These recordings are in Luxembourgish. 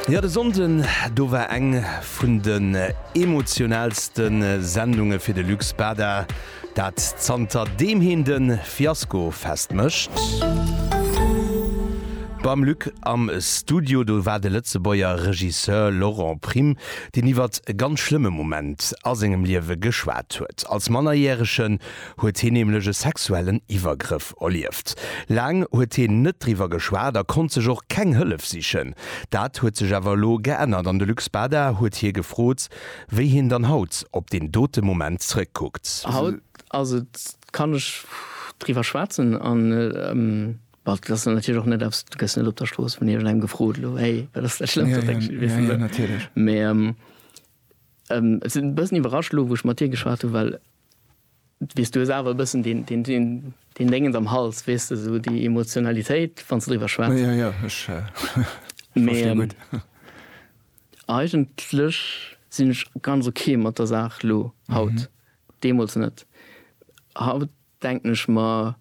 Ja, de Sonnden do war eng vun den emotionalste Sendunge fir de Luc Spada, dat zanter deem hien de Fiasko festmécht. Beim Luc am Studio do war de Lëtzebuerger Regisseur Laurent Prime, deen iwwert e ganz schlëmme Moment a sengem Liewe geschwat huet. Als Mannerjärege huet hien nämlech e sexuellen Iwwergrëff erlieft. Laang huet hien net driwwer geschwat a konnt sech och keng Hëllef sichen. Dat huet sech awer elo geännert an de Luc Spada huet hie gefrot, wéi hien dann haut op deen dote Moment zrëckkuckt. Haut ass et, kann ech driwwer schwätzen an bon, dat ass dann natierlech och net eppes, du gëss net op der Strooss vun iergendengem gefrot elo, hey, wat ass dat Schlëmmst, wat denks du iwwer mech? Mee ech sinn e bëssen iwwerrascht elo, wou ech mat dir geschwat hunn, well Weess, du hues awer e bëssen deen Déngens am Hals, weess de, esou déi Emotionalitéit, wann s de driwwer schwätz. Jo, jo, ech verstinn gutt. Mee eigentlech sinn ech ganz ok mat der Saach elo, haut. Deemools net. Haut denken ech mer.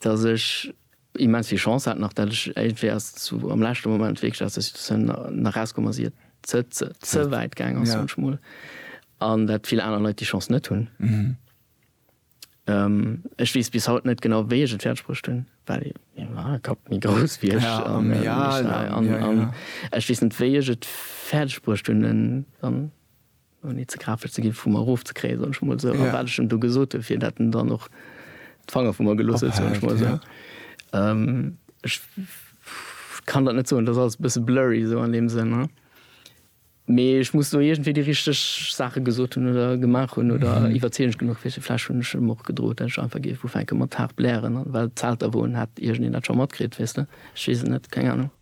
dass ech immens vill Chance hat nach, dat ech iergendwéi ass zu am leschte Moment wierklech aus der Situatioun nach rauskomm ass, ier et ze ze ze wäit gaang ass, soen ech mol, an dat vill aner Leit déi Chance net hunn. Ech weess bis haut net genau, wéi ech et fäerdeg bruecht hunn, well jo ma e Kapp méi grouss wéi ech an ech war an an ech weess net, wéi ech et fäerdeg bruecht hunn, en an. ouni ze grafesch ze ginn, vu mer erofzekréien, soen ech mol esou, a wat ech em do gesot hunn, fir datt en dann och d'Fanger vu mer gelooss huet, soen ech mol esou. Ech kann dat net soen, dat ass alles e bësse blurry esou an deem Sënn. Mee ech muss do iergendwéi déi richteg Saache gesot hunn oder gemaach hunn oder iwwerzeegend genuch fir se. Vläch hunn ech em och gedroot, datt ech einfach géif ufänke mat haart blären, well d'Zelter, wou en hat, iergendeen dat scho matkritt, weess de. Ech weess et net, keng Anung.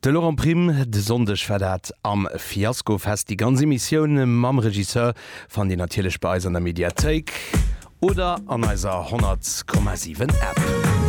De Laurent Prim, De Sonndeg war dat am Fiaskofest. Déi ganz Emissioun mam Regisseur fannt Dir natierlech bei eis an der Mediathéik oder an eiser 100,7 App.